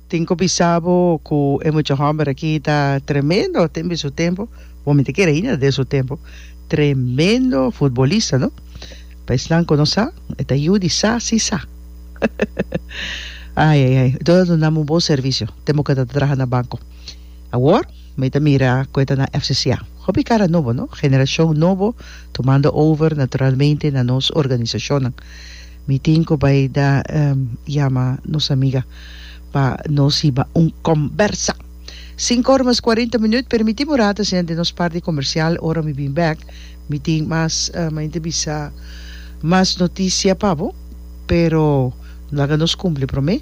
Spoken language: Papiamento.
Tin cu bisa bo cu e mucha homber aki ta tremendo tembe su tempo, bo mi ta kere ainda den su tempo, tremendo futbolista no, pa esnan cu no sa e ta yu di sa si sa ai ai ai entonces nos nan un bon servicio te moca ta traha na banco awor mi ta mira cu e ta na FCCA hopi cara nobo no generacion nobo tumando over naturalmente na nos organisacionnan. Mi tin cu bay da yama nos amiga pa nos hiba un combersa. Sinku ora mas cuarenta minuut. Permiti bo rata siña den nos parti comercial. Ora mi bin bek mi tin mas mañanita bisa mas noticia pa bo. Pero laga nos cumpli prome.